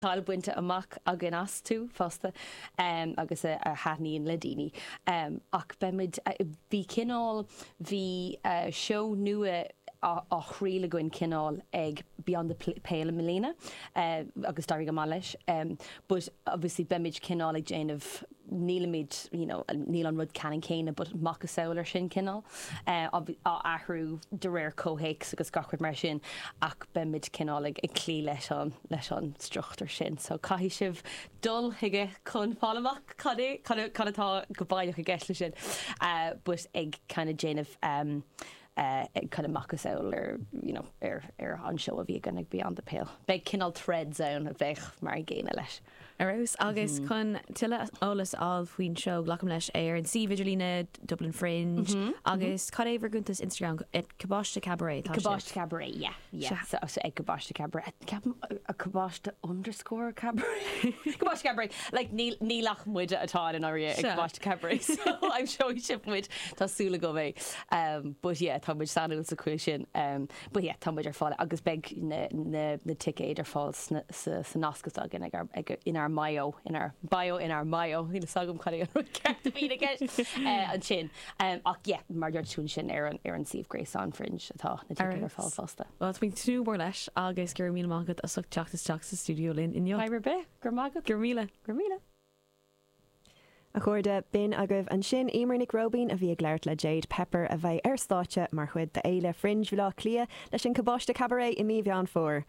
cáil bainte amach againn astu fosta agus a thaitníonn le daoine ach beidh muid, bhí cineál, bhí seó nua á thriail againn cineál ag Beyond the Pale i mbliana agus d'éirigh go maith leis but obviously beimid cineál ag déanamh nílimid you know níl an rud ceannann céanna but macasamhail air sin cineál á athrú de réir comhthéacs agus gach rud mar sin ach beimid cineál ag cloí leis an leis an struchtúr sin so caithfidh sibh dul chuige chun fáil amach cad é cad é cad atá go baileach i gceist leis sin but ag kind of déanamh ag kind of macasamhail ar, you know ar ar an seó a bhí againn ag Beyond the Pale beidh cineál threads ann a bheadh mar an gcéanna leis. ar fheabhas. Agus chun tuilleadh eolas a fháil faoin seó, glacaim leis, ar an suíomh idirlíne Dublin Fringe agus cad é bhur gcuntas Instagram? Ag Cabáiste Cabaret atá sibh? Cabáiste Cabaret, yeah, yeah, so ag Cabáiste Cabaret, ceapaim, Cabáiste underscore Cabaret? Cabáiste Cabaret, like níl, níl ach muide atá i ndáiríre ag Cabáiste Cabaret, so aimseoidh sibh muid, tá súil agam. But yeah, tá muid sainiúil sa chaoi sin. But yeah, tá muid ar fáil agus beidh na ticéid ar fáil sa nasc atá againn inár mbio, inár bio, inár mbio, níl fhios agam cad é an rud ceart a bhíonn i gceist ansin ach yeah, mar a dúirt tú ansin ar an suíomh gréasáin Fringe atá na ticéid ar fáil fosta. Alright, bhuel tá mé ag tnúth go mór leis agus go raibh míle maith agat as ucht teacht isteach sa stiúideo linn inniu. Fadhb ar bith, go raibh maith agat. Go raibh míle. Go raibh míle. A chairde, b'in agaibh ansin Eimear Nic Róibín a bhí ag labhairt le Jade Pepper a bheidh ar stáitse mar chuid d'Fhéile Fringe Bhaile Átha Cliath leis an Cabáiste Cabaret i mí Mheán Fómhair.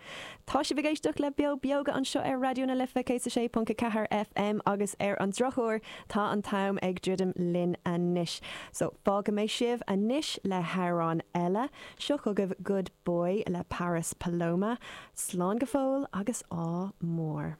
Tá sibh ag éisteacht le Beo Bíogach anseo ar Raidió na Life 106.4 FM agus ar an drochuair tá an t-am ag druidim linn anois so fágfaidh mé sibh anois le hamhrán eile. Seo chugaibh Good Boy le Paris Paloma. Slán go fóill agus ádh mór.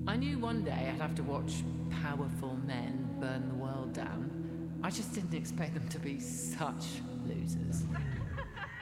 I knew one day I'd have to watch powerful men burn the world down, I just didn't expect them to be such losers.